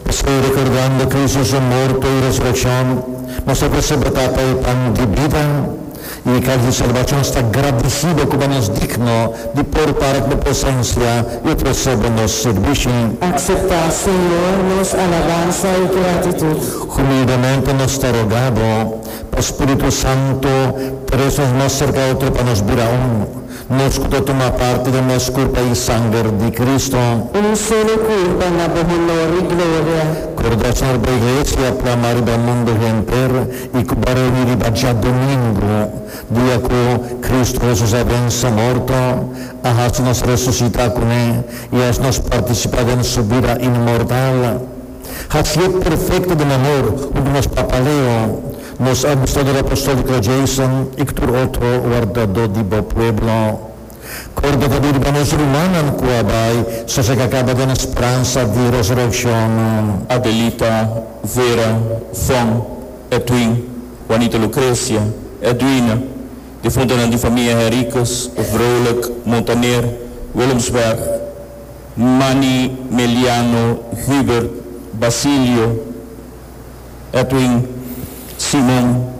Pasobra rekordando Kristu su morto i resurekshon, nos ta persebi Tata e pan di bida i e kals di salbashon. Sta gradisiba kuma nos digno di por para ku bo presensia i ofresé bo nos sirbishi. Akseptá, Señor, nos alabansa i gratitut. Humildemente nos ta rogá bo pa spiritu santu, trese nos mas serka otro pa nos bira un. Nos ku ta tuma parti den mes kurpa i sanger di Kristu. Un solo kurpa na bo honor i gloria. Kordá Señor bo Iglesia plamá riba mundu henter i ku bo reuní riba djadumingu, dia ku Kristu Hesus a vense morto, a hasi nos resusitá kuné i hasi nos partisipá den Su bida inmortal. Hasié perfekto den amor huntu nos Papa Leo. Nos Abusador Apostolico Jason i tur otro wardadó di bo pueblo. Corda ta biriba nos rumannan cu a bai sosega caba den e speransa di resureccion. Adelita, Vera, Von, Edwin, Juanita Lucrecia, Edwina, difuntonan di famia Henriquez, Vrolijk, Montaner, Willemsberg, Manny, Meliano, Hubert, Basilio, Edwin Simon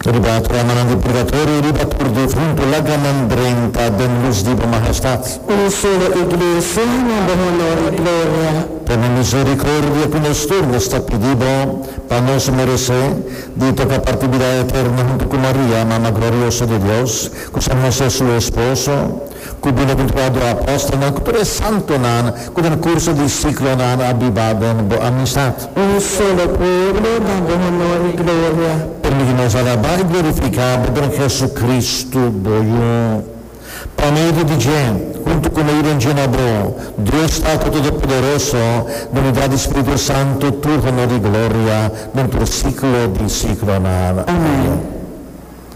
riba programannan di purgatorio riba tur di huntu lagranan drenta den lus di bo Mahestad. Un solo Iglesia na bo honor i gloria. Tene misericordia ku nos tur nos ta pidi bo pa nos merece di toka parti bida eterno huntu ku Maria Mama Glorioso di Dios ku sa mester su esposo. Ku bienaventurá do apòstelnan ku tur e santonan ku den kurso di siklonan a biba den bo amistat. Un solo pueblo da bo honor i gloria. Permití nos alabá i glorifiká bo den Hesukristu, bo Yu. Pa medio di dje, huntu ku medio den dje na bo, Dios Tata Todopoderoso, na unidat di spiritu santu, tur honor i gloria den tur siklo di siklonan. Amèn.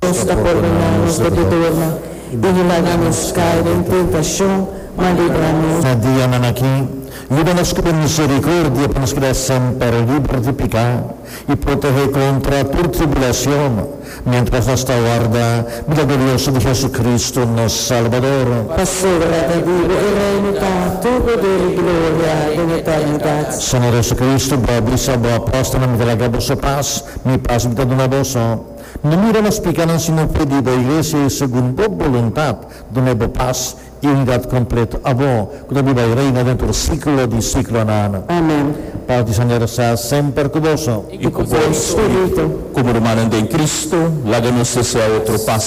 Dios ta pordona nos di picadurnan, i no laga nos cai den tentacion, ma libra nos. Na dianan aki, yuda nos cu bo misericordia pa nos keda semper liber di pica i protege contra tur tribulacion, mientras nos ta warda bida glorioso di Jesucristo, nos Salbador. Pasobra David e Rey no ta tur poder i gloria den eternidad. Señor Jesucristo, bo a bisa bo apostolnan di laga boso pas. Mi pas mi ta duna bo so. Mi no mira nos pica nan sino fe di bo Iglesia y segun bo boluntad dun'e bo pas y unidad completo abo cu ta di bay reina den tur siclo di siclonan. Amen. Paz di Señor sea semper cu boso. Y cu bo espirito. Como rumannan den Cristo, laga nos desea otro pas.